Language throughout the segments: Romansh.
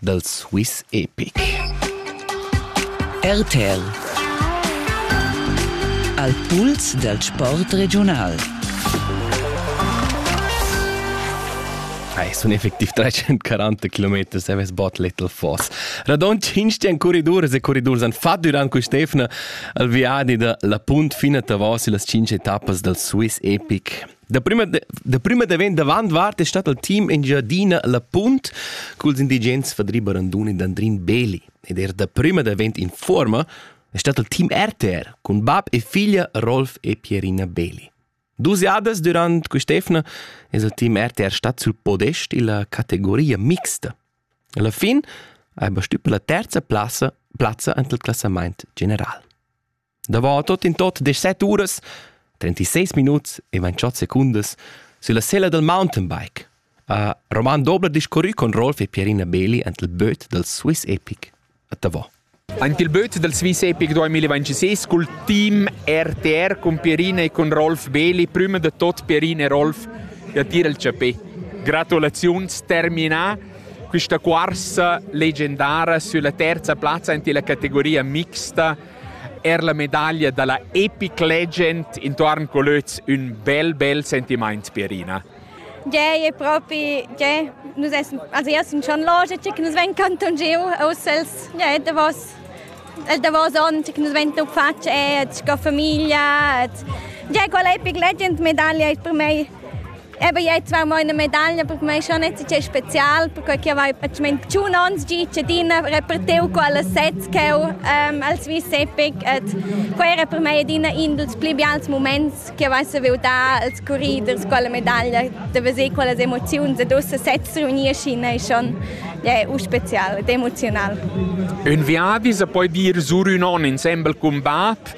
dal Swiss Epic. RTL Al puls dal sport regiunal. Ei sun effectiv 340 km seves bot little foss. Radon cinstian corriduras e corridurs han fatto durant quest'efna al viadi da la punt fina tavos las 5 etappas dal Swiss Epic. Da prima, da prima davent davant vart è stat il team Engiadina La Punt culs indigens Fadri Baranduni e Andrin Beli. Ed er da prima davent in forma è stat il team RTR cun bab e figlia Rolf e Pierina Beli. Dus jadas durant quest'efna è il team RTR stat sul podest illa categoria mixta. Alla fin ha bastü per la terza plazza, plazza ant il classamaint general. Davant tot in tot deset uras, 36 minuts e 28 secundas, sulla sella del mountainbike ha Roman Dobler discurrü con Rolf e Pierina Beli ant il böt del Swiss Epic a Tavò. Ant il böt del Swiss Epic 2026 col team RTR con Pierina e con Rolf Beli, prima de tot Pierina e Rolf, ja tira il chapè. Gratulaziuns, terminà questa corsa leggendara sulla terza plazza in la categoria mixta Er la medaglia da la Epic Legend intuorn Colöz ün bel bel sentimaint Pierina. Gei, è propi, gei, nus essen, also io sun schon loge, che nus ven canton giu, aus els, gei, davos, el davos on, che nus ven tu faccia, et sco famiglia, et, gei, quella Epic Legend medaglia è per mei Eben jetzt war meine Medaille, aber man ist schon nicht so spezial, porque ich habe ich meine, schon ans Gicedina repartiert alle Sets ähm, als Vice-Epic. Quella per me è una indul più bials moments che avesse voluto dare als corriders con la medaglia, di vedere quelle emozioni e dus sets riunisci è schon yeah, spezial ed emozional. Un viadi se puoi dire sur un on insembel combat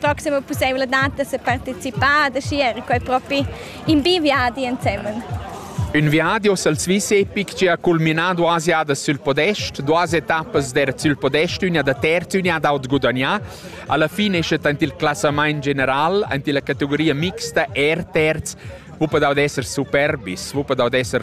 proxima pussaivladad da sa participar, da schi era quai propi in biviadi ensemen. Un viadi o al Swiss epic che ha culminado duas jadas sul podest, duas etappas der sul podest, una da terzo, una d'aut gudagnà. Alla fine esce ant il classament general, ant la categoria mixta er terz, wuppe da esser superbis, wuppe da esser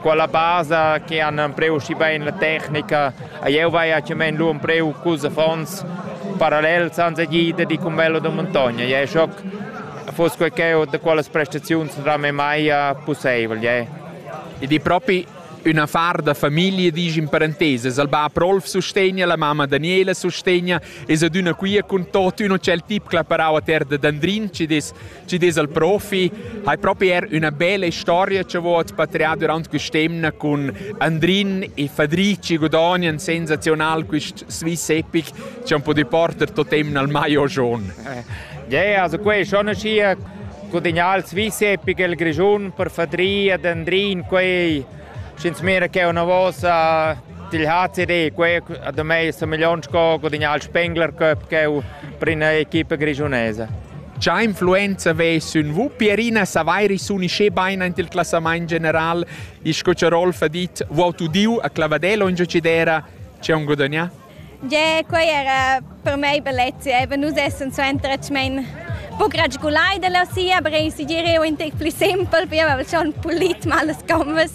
quella basa che han empreu schi bein la tecnica a jeu vai a chiamen lu empreu cus affons parallel senza gida di cum bello da montagna je schoc fos quel che da quelle prestazioni non era mai possibile je ed è proprio un affar da famiglia dici in parentese il bab Rolf sostegna la mamma Daniela sostegna e ad una quia con tot uno c'è il tip claparau a terra d'Andrin ci des Ci des al profi, hai propi er üna bella storia che vot patrià durant quest'emna cun Andrin e Fadrici Godonian sensazional quist Swiss Epic che han podi porter totemna al maio gion. Yeah, also quei schon ascia gudagnà il Swiss Epic el Grischun per Fadri ed Andrin quei Sch'ins mira ch'eu na vosa til ha tirì quei da mei sa million sco gudignà il Spengler Cup ch'eu prin a equipa grischunesa. Cha influenza vess ün vu Pierina Savairi s'unisce bain aint il classamaint general e sco cha Rolf ha dit, vuot udiu a Clavadel o in giocidera, c'è un gudagnà? Yeah, quei era per mei bellezia. Eva, nus essans suenter atgmain poc ragulai dalla sia, aber ei segireu in tec pli simpel, pia avevel schon pulit mal las gommas.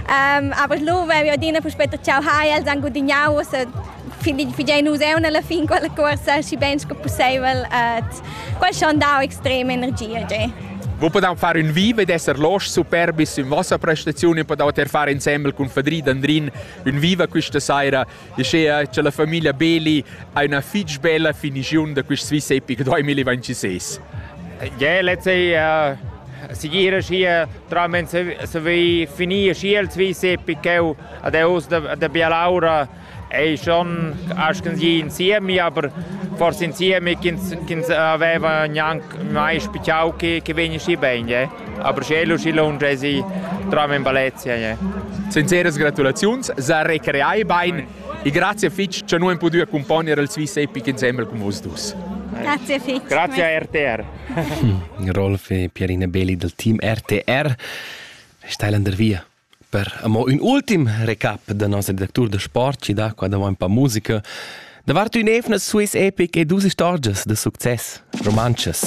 Um, aber lu vevi adina puspei tschau hai, els han gudignau, ussa figein nus eu alla fin quella corsa, schi ben sco pusseivel, et quel schon dau extrema energia, yeah. Vous podem far un vive d'esser losch superbis in vossa prestazione, podete far insembel con Fadri Dandrin un viva questa sera Uschea cha la famiglia Beli ha üna fich bella finigiun da quist Swiss Epic 2026. Ja, let's say uh, sigira schia tramen se vi finir schia il Swiss Epic cheu ad eus da, da Bialaura ei schon aschen sie insieme aber forse insieme chins chins aveva gnanc mai spichau che che veni schi bene A Bruxelles uscilla un gesi tram in Valencia. Yeah. Sinceras gratulaziuns, sa recreai bein e grazie fitg che noi podu accompagnar il Swiss Epic insieme con vos dus. Grazie fitch. Grazie RTR. Rolf e Pierina Belli del team RTR stailan der via per amo un ultim recap da nostro direttore de sport ci da qua davanti pa musica davanti un evna Swiss Epic e dus istorgias de succes romances.